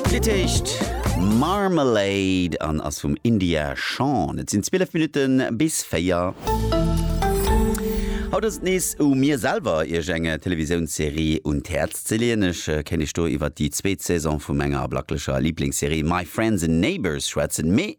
D'Lidd heescht Marmalade an ass vum India Shawn. Et sinn 12 Minutte bis 4. Haut ass et nees u mir selwer, Iech eng Televisiounsserie un d'Häerz ze leeën. Ech kéint Iech do iwwer déi zweet Saison vu menger blacklecher Liblingsserie My Friends and Neighbours schwätzen. Mee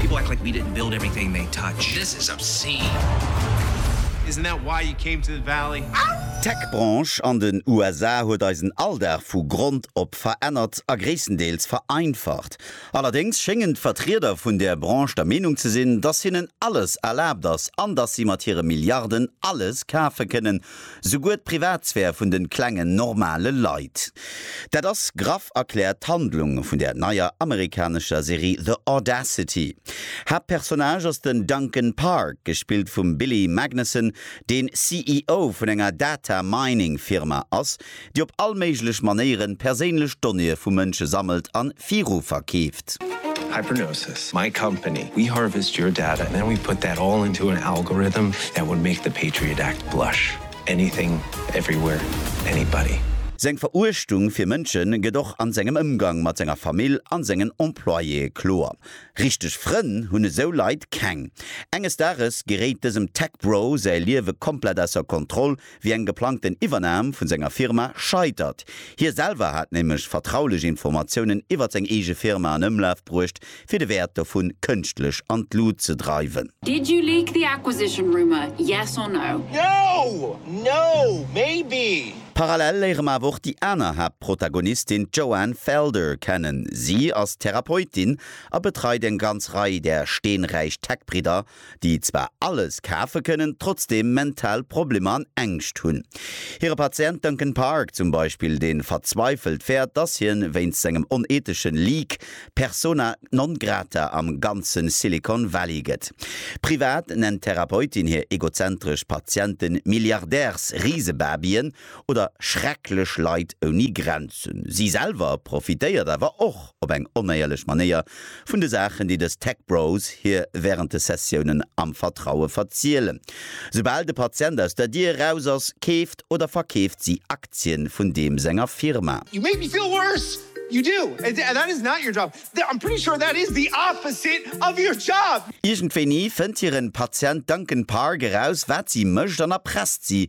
People act like we didn't build everything they touch. This is obscene. Isn't that why you came to the valley? Ahh! D'Tech-Branche an den USA huet eisen Alldag vu Grond op verännert a gréisstendeels vereinfacht. Allerdéngs schéngen d'Vertrieder vun där Branche der Meenung ze sinn, dass hinnen alles erlaabt ass an dass si mat hire Milliarden alles kafe kënnen, Souguer d'Privatsphär vun de klengen, normale Leit. Dat ass graff erkläert d'Handlung vun der neier amerikanescher Serie The Audacity. Haaptpersonnage ass den Duncan Park, gespillt vum Billy Magnussen, deen CEO vun enger Data-Mining-Firma ass, déi op all méiglech Manéieren perséinlech Donnéeë vu Mënsche sammelt an viru verkeeft. Hypernosis, my company, we harvest your data and then we put that all into an algorithm that would make the Patriot Act blush. Anything, everywhere, anybody. Seng Veruechtung fir Mënsche gëtt och an sengem Ëmgang mat senger Famill an sengen Employéë kloer. Richteg Frënn hunn esou Leit keng. Enges Dages geréit dësem Tech-Bro säi Liewe komplett ausser Kontroll, wéi eng geplangten Iwwernam vun senger Firma scheitert. Hie selwer hat nämlech vertraulech Informatiounen iwwert seng eege Firma an Ëmlaf bruecht, fir de Wäert dovun kënschtlech an d'Lut ze dreiwen. Did you leak the acquisition rumour, yes or no? No! No! Maybe! Parallel léiere mer awer och déi aner Haaptprotagonistin, d'Joanne Felder, kennen. Si ass Therapeutin a betreit eng ganz Rei där steenräich Tech-Bridder déi zwar alles kafe kënnen, trotzdeem mental Problemer an Ängscht hunn. Hire Patient Duncan Park zum Beispill, dee verzweifelt fäert, dass hien wéinst sengem onethesche Leak persona non grata am ganze Silicon Valley gëtt. Privat nennt d'Therapeutin hir egozentresch Patiente Milliardärs-Risebabyen oder schrecklech Leit ouni Grenzen. Si selwer profitéiert awer och. op eng onéierlech Manéier, vun de Saachen, déi dës Tech Bros hir wärend de Sessiounen am Vertraue verzielen. Soubal de Patient aus der Dier eraus ass, keeft oder verkeeft si Aktien vun deem senger Firma. You make me feel worse! You do! And that is not your job! I'm pretty sure that is the opposite of your job! Iergendwéini fënnt hiren Patient Duncan Park eraus, wat si mécht an erpresst si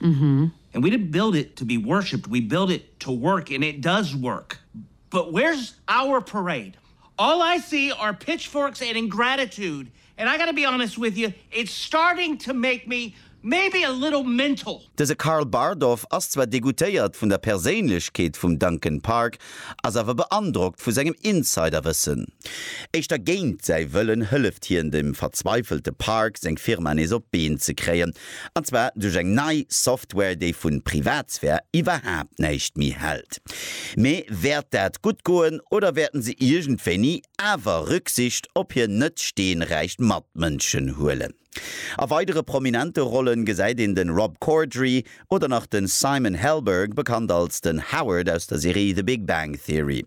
And we didn't build it to be worshipped, we built it to work and it does work. But where's our parade? All I see are pitchforks and ingratitude and I gotta be honest with you, it's starting to make me maybe a little mental. Dëse Karl Bardolph ass zwar degoutéiert vun der Perséinlechkeet vum Duncan Park, ass awer beandrockt vu sengem Insiderwëssen. Éischter géint säi Wëllen hëlleft hien dem verzweifelte Park, seng Firma nees op d'Been ze kréien. An zwar duerch eng nei Software, déi vu Privatsphär iwwerhaapt näischt méi hält. Mee wäert dat gutt goen oder wäerten se iergendwéini awer Rücksicht op hir net steenräich Matmënschen huelen? A weidere prominente Rollen gesäit een den Rob Corddry oder nach den Simon Helberg, bekannt als den Howard aus der Serie The Big Bang Theory.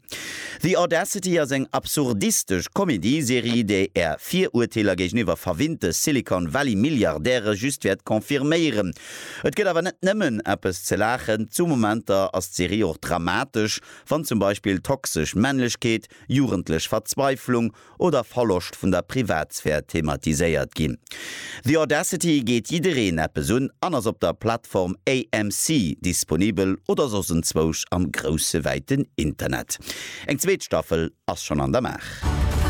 The Audacity ass eng absurdistesch Comédie-Serie, déi Är Virurteeler géigeniwwer verwinnte Silicon Valley Milliardäre just wäert confirméieren. Et gëtt awer net nëmmen eppes ze laachen, zu Momenter ass d'Serie och dramatesch, wann zum Beispill toxesch Männlechkeet, jugendlech Verzweiflung oder Verloscht vun der Privatsphär thematiséiert ginn. The Audacity geet jiddereen eppes un an ass op der Plattform AMC disponibel oder soss enzwousch am grousse wäiten Internet. Eng zweet Staffel ass schonn an der Maach.